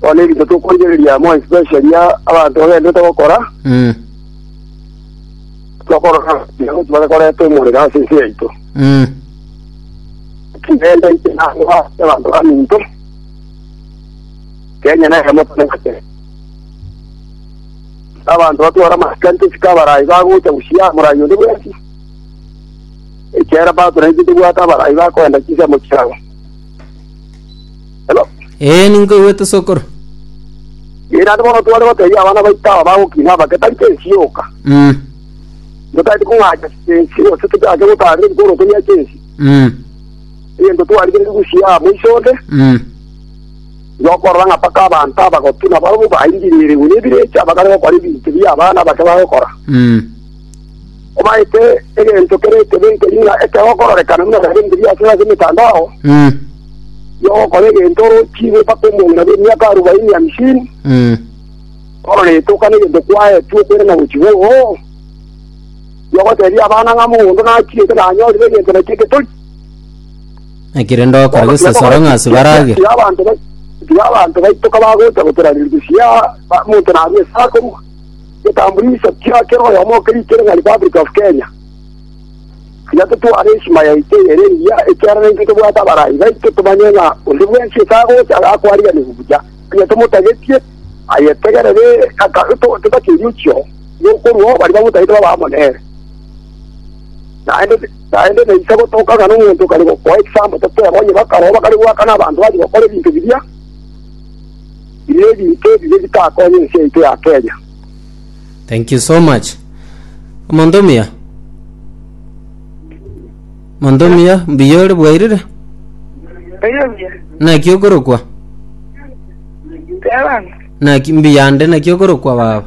Bono erinde tokorigereria amo especially abanto bagenderete gokora, Mm. tokorora ekiagera ekio bakorete omorero ase ense yaito. Mm. Kigenda ite nabo ase abanto baminto. Kenya nere emoto neng'ake. Abanto batwara amasikani tosika abarai bagocha gosia morai onde bwensi. Ekiagera bato naintwe tobwate abarai bakoenda chinsemo chiabo. Hello? Ee, ninkoigwete sokoro. Ee, naende bono tware gotebia abana baito aba bagokina aba getari chensi yoka. Mm. Totaete kong'acha chensi gose tochake gotarire bikoroto bia chensi. Mm. Egento twarire rigusia amo iso onde, Mm. yokorora ng'a mpaka abanto abagotuna barobwo baingirire igoro ebirecha bakare gokora ebinto bia abana bake bagokora. Mm. Obaete egento kere ekebe nkeri ng'a ekero okororekana buna nare nkeria ase ase emetandao, Eh, nigo ogokora egento orochigwe mpaka omong'ina bw'emiaka arobaini hamsini, eh, orore etoka negento kwaetwe okoirana gochia iga oo. Nigo ogotebia abana ng'a mogondo nachirete nanyorire egento nakio eketori. ekere ndokora gesesoro ng'a ase barage. Tiga abanto ba- tiga abanto baito kabagocha gotoraneria chisiaa, ba- omonto narue ase akorua. Eketambuliso kia kera oyomo okerikire ng'a Republic of Kenya. Tiga totware heshima yaito eye ere engiya, ekiagera intwe tobwate abarai baito tomanye ng'a onde bwensi ase agocha iga akwariganigwe buya, onye tomotagetie, aye tegerere aka totake oriochio rw'okorua oo baria bamotagete babe amo nere. Naende naende naisa gotoka ng'a nomonto okare gokoa ekisambo toteeba onye bakaroo bakare goakana abanto bache gokora ebinto biria. Bire ebinto ebibe bitakonya ense yaito ya Kenya. Thank you so much. Omonto omuya. Omonto omuya mbuya ore bwairire. Oyo buya. Naki okorokwa. Tebana. Naki mbuya ande naki okorokwa baba.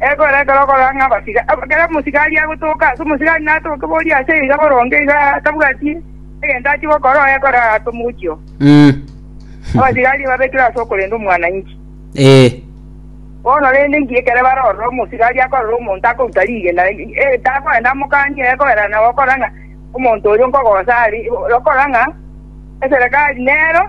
Ekero ekero okorora ng'a abasiga- ekero omosigari agotoka, ase omosigari natoke boria ase iga boronge iga atabwati egento achia gokora oye ekero arase omogochi oo. Mm. Abasigari babekire ase okorenda omwananchi. Ee. Bono rende inki ekero bare ororo omosigari akorora omonto akoruta rigena, eh, takorenda amokanie egoera nabo okora ng'a omonto oyo nkogosa are, okorora ng'a eserekari nero.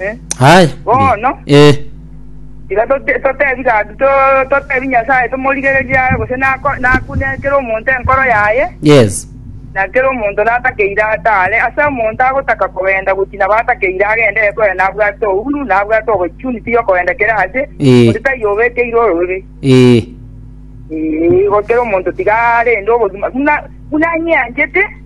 Eh? Aye. Bono. Eh. Iga tote- totebi gaki to- totebi Nyasae tomorigererie aye gose nako- nakune kera omonto enkoro yaye, Yes. na kera omonto natakeire atare. Ase omonto agotaka kogenda gochia nabo atakeire agende ekore nabwate ouru, nabwate opportunity yokogenda kera ase, Eh. onde taiyo obekeire ororori. Eh. Ee, igo kera omonto tiga arende obogima buna buna anyeanchete,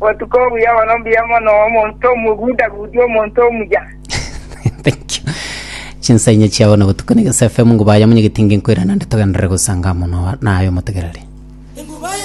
Botuko obuya bono mbuya mono omonto omogudagudi, omonto omuya. Thank you. Chinsainya chiao na botuko ni Gesa FM ngubaya munyegete nge nkoira nande togenderere gosanga mono naye omotegereri.